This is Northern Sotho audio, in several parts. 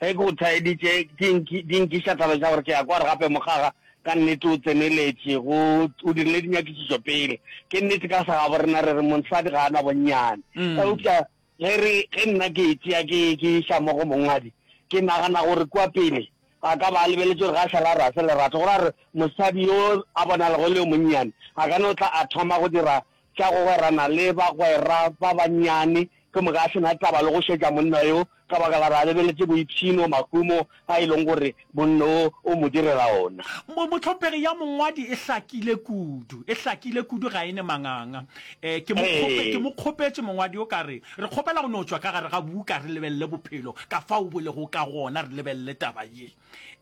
Ge ke go thaeditše, di nki, di nkiša taba tša gore ke a kwa gore gape mokgaga ka nnete o tseneletše, go, o dirile dinyakišišo pele. Ke nnete ka sa gabo rena re re monsadi ga a na bonnyane. Eupša ge re, ge nna ke e tšea ke, ke iša mo go mongwadi, ke nagana gore kua pele a ka ba a lebeletše gore ga a šala a re a se lerato, gore a re mosadi yo a bonalago e le yo monnyane a ka no tla a thoma go dira tša go gwerana le bagwera ba bannyane, ke moka a se na taba le go šetša monna yo, ka baka la gore a lebeletše boipshino, mahumo a e lego gore monna wo o mo direla ona. Mohlopegi ya mongwadi e hlakile kudu, e hlakile kudu, ga e ne manganga. Ke mo kgope, ke mo kgopetše mongwadi yo ka re, re kgopela go no tšwa ka gare ga buka re lebelele bophelo ka fao bo lego ka gona, re lebelele taba ye.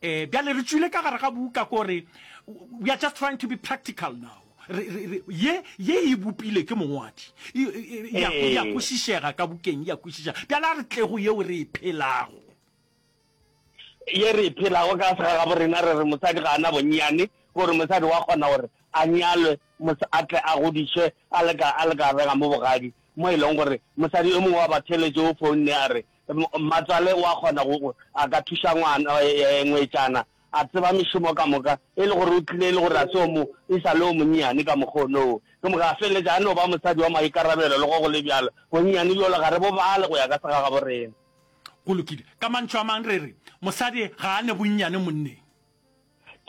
Bjale re tšwile ka gare ga buka ko re, we are just trying to be practical now. ye ye e bopile ke mongwadi ya go ya kwešišega ka bukeng ya kwešišega bjale a re tlego yeo re e phelago ye re e phelago ka sega ga borena re re mosadi ga ana bonnyane gore mosadi wa kgona gore a nyalwe a tle a godišwe a le ka a le ka rega mo bogadi mo e leng gore mosadi yo mongwe wa batheletše o founne a re mmatswale wa kgona go a ka thuša ngwana ngwetšana A tseba mešomo ka moka, e le gore o tlile e le gore a se o mo, e sa le o monnyane ka mokgwa ono wo. Ke moka a feleletša a no ba mosadi wa maikarabelo, le go go le bjalo. Bonnyane bjolo ga re bo bale go ya ka segagabo rena. Go lokile. Ka mantšu a mang, re re, mosadi ga a ne bonnyane monneng.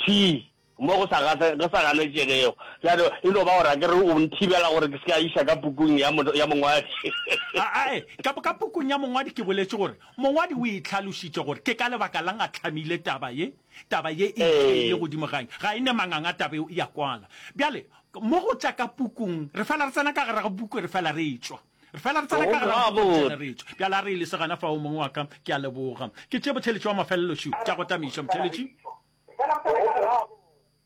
Thii, mo go sa, go sa ganetšegego. Bjale, e no ba gore a ke re o nthibela gore ke se ke a iša ka pukung ya, ya mongwadi. A, a, ee, ka, ka pukung ya mongwadi ke boletše gore Mongwadi o e hlalošitše gore ke ka lebaka la'ng a hlamile taba ye, Taba ye e itheile godimo ga eng? Ga e ne manganga taba yeo e a kwala. Bjale, mo go tša ka pukung, re fela re tsena ka gare ga puku re fela re tšwa. Re fela re tsena ka gare ga puku re fela re tšwa. Bjale a re e lese gona fao, mong wa ka. Ke a leboga. Ke tše botheletši bja mafelelo šo, tša go tameiša, motheletši.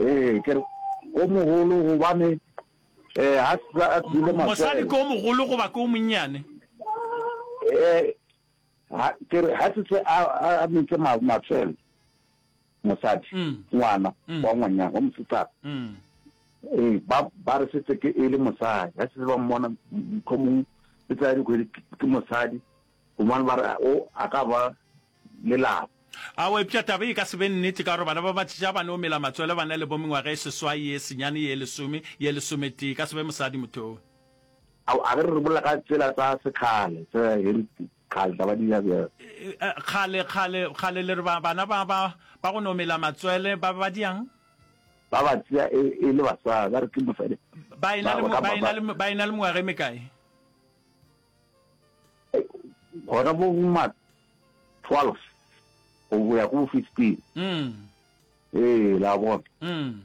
Ee, ke re, o mogolo gobane um a sa a tswile maswele. Mosadi ke o mogolo goba ke o monnyane? Um ke re, ga se se a metse maswele mosadi, mm. ngwana mm. wa ngwanyana wa mosetsana mm. ee ba re setse ke e le mosadi ga se ba mmona motlhomong e tsaya dikgwedi ke mosadi gomane ba re o a ka ba lelapa. Ao epša taba ye e ka se be nnete ka gore bana ba batšeša ba no mela matswele ba na le bo mengwaga e seswai, ye senyane, ye lesome, ye lesometee. E ka se be mosadi motho oo. Ao a ge re rebollela ka tsela tsa sekgale tse ge re kgantla ba dira bjang? Kgale, kgale, kgale le re ba, bana ba, ba, ba go no mela matswele ba be ba diang? Ba ba tšea e, e le basadi, ba re ke mosadi. Ba e na le, ba e na le, ba e na le mengwaga e mekae? gona bo ma twelve go ya go fifteen mm. ee la bona mm.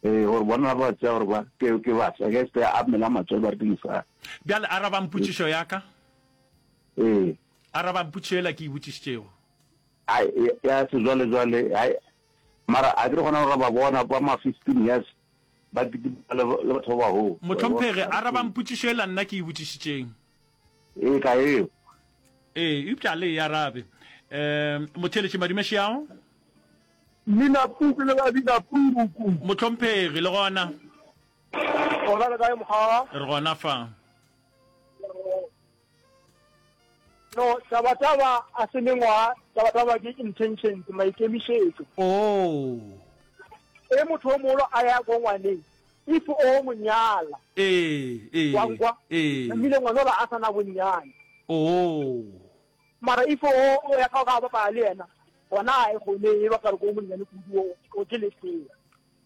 ee gore bona ba tsea gore ba ke basa ke se a mela matswele ba re ke mosadi bjale a rabang putšišo ya ka ee a rabang putšišo ela ke e botšišitšego ya sejwalejwale mara a ke re gona gore ba bona ba ma fifteen years Ba kitima le batho ba baholo. Mohlomphegi, arabang potšišo yela nna ke e botšišitšeng. E ka yeo. Ee, eupša a le e arabe. Um, motheeletši, madumeši ao. Mminapuku le babinapuku. Mohlomphegi, le gona? Gona le kae, mokgalabana? Re gona fa. No, tabataba a se mengwaga, tabataba ke intentions, maikemišetšo. Oo. Ge motho o mogolo a ya ko ngwaneng, if o mo nyala, Ee, ee, wa nkwa, ee. namile ngwana ola a sa na bonnyane. Oo. Mara if o o ya ka go ka bapala le yena, gona ga e kgone, e bapala ko monnyane kudu, o, o ke lesea.